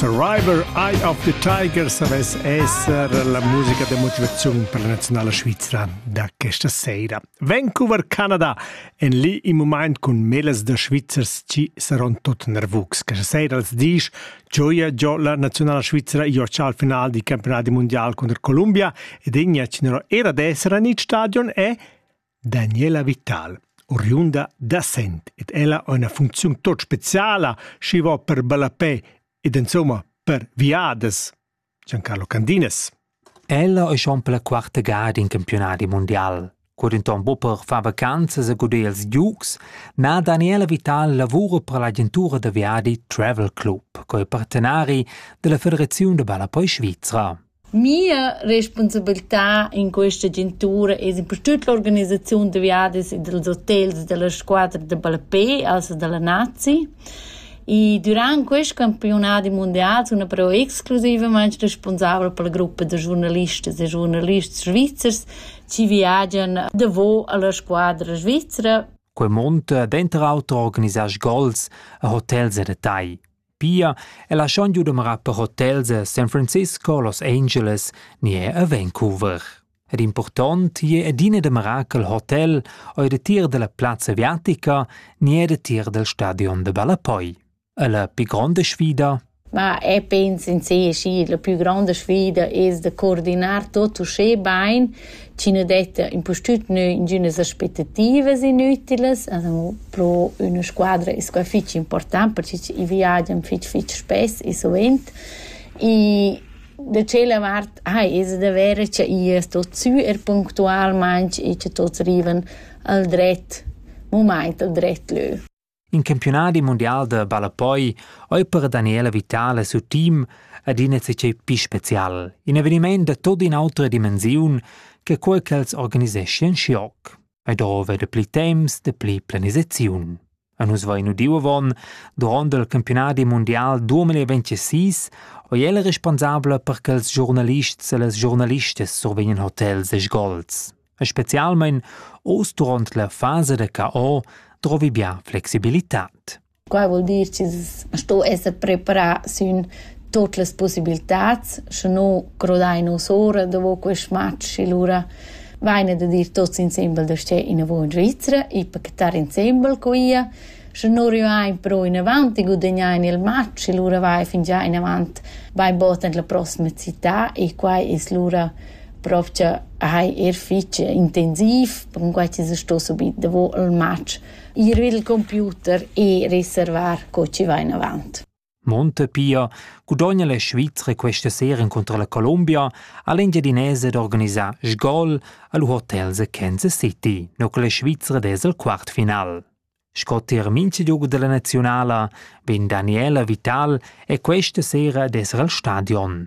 Survivor Eye of the Tiger savess esser la musica da motivaziun per la nazionala svizra da questa sera. Vancouver, Canada en lì in moment cun melas da Svizzers ci saron tot nervugs. Questa sera als disch gioia giò la nazionala svizra Iorcia al final di campionati mondial contro Columbia ed Ignac era d'essere in stadion e Daniela Vital, oriunda da Sent ed ella ha ina funcziun tot speciala, schi va per ballapè ed insomma per viadas. Giancarlo Candinas. Ella è schon per la quarta gada in campionati mondial. Cur in ton Bupper fa vacanzas a guder ils giugs, na Daniela Vital lavura per l'agentura da viadi Travel Club, co è partenari della Federaziun da ballapoi svizra. Mia respunsabiltà in questa agentura es in per tut l'organisaziun da viadis e dals hotels da la squadra da ballapè, also da la nazi. E dürant quist campiunadi mundial sun però exclusivamaing respunsabla per la gruppa da giurnalistas e giurnalists svizzers chi viagian davo a la squadra svizra. Quel mund denter auter organisar sgols e hotels e da tai. Pia è la schon giu dumara per hotels a San Francisco, Los Angeles, ni è a Vancouver. Ed important je adina dumarà che il hotel o il tir della plazza aviatica ni è il tir del stadion de Ballapoi. E la più grande sfida Ma e penso in sé, sì, la più grande sfida è de coordinar tutto schön bene, chi nu detta impustüt nü ingünas aspettativas inütilas, as amo pro üna squadra es quai fich important perche i viagian fich fich spess e suvent. E da tschella vart ai es da verer cha i es tot sü er punctualmaing e cha tots rivan al dret mumaint al dret lö. In campiunadi mundial da ballapoi ei per Daniela Vitale sut team adina zatgei pli special, in eveniment da tutta un'autra dimensiun che quei ch'els organiseschian schioc. E da va da pli temps, da pli planisaziun. A nus vain udiu avon, duront il campionadi mondial 2026, oi el responsabla per che els giornalists e les giornalistas survegnan hotels e sgols. e specialmein oz duront la fasa da cao drovi bia flexibilitad. Qua vuol dir ch'ins sto esser preparà sün tot las possibiltats, sche no crodai nos ora dopo quest match e lura vaine da dir tots insembel da stè in avo in Svizzera e pacettar insembel co ia, sche no rivain pro in avanti guadagnain il match e lura vai fin già in avant vai botan la prossima città e qua es lura Provgia hai er fich intensiv, percunquai chi s'es sto subit davo a'l match, ir i'l computer e reservar co chi va inavant. Montepia gudogna la Svizra questa sera contro la Colombia a l'engiadinese d'organisar sgol al hotel The Kansas City no con la Svizra des al quartfinal. Sco tier mincha giogo della nazionala vegn Daniela Vital e questa sera desser al stadion.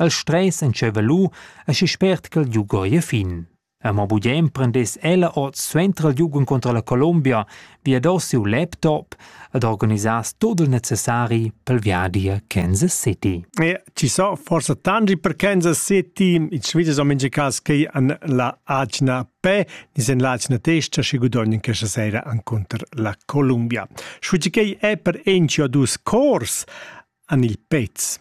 El stress entscheiva lu aschi spert ch'el liug ora a fin. Mo bugen prendess ella ord suenter il liug encontrar la Colombia, viadass siu laptop ed organisass tut il necessari pel viadi a Kansas City. E ci so forse tanti per Kansas City, in Svizzera so minge cas che an la agna pe, nis en l'agna testa si gudogn in questa sera encontr la Colombia. Schuci che è per encio dus cors an il pez.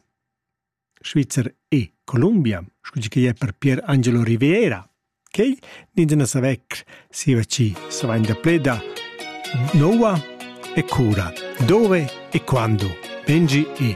Svizzer e Columbia, scu chi ei per Pier Angelo Riviera. Quei nigina savec siva ci savenda pleda Noa e cura, dove e quando, Benji e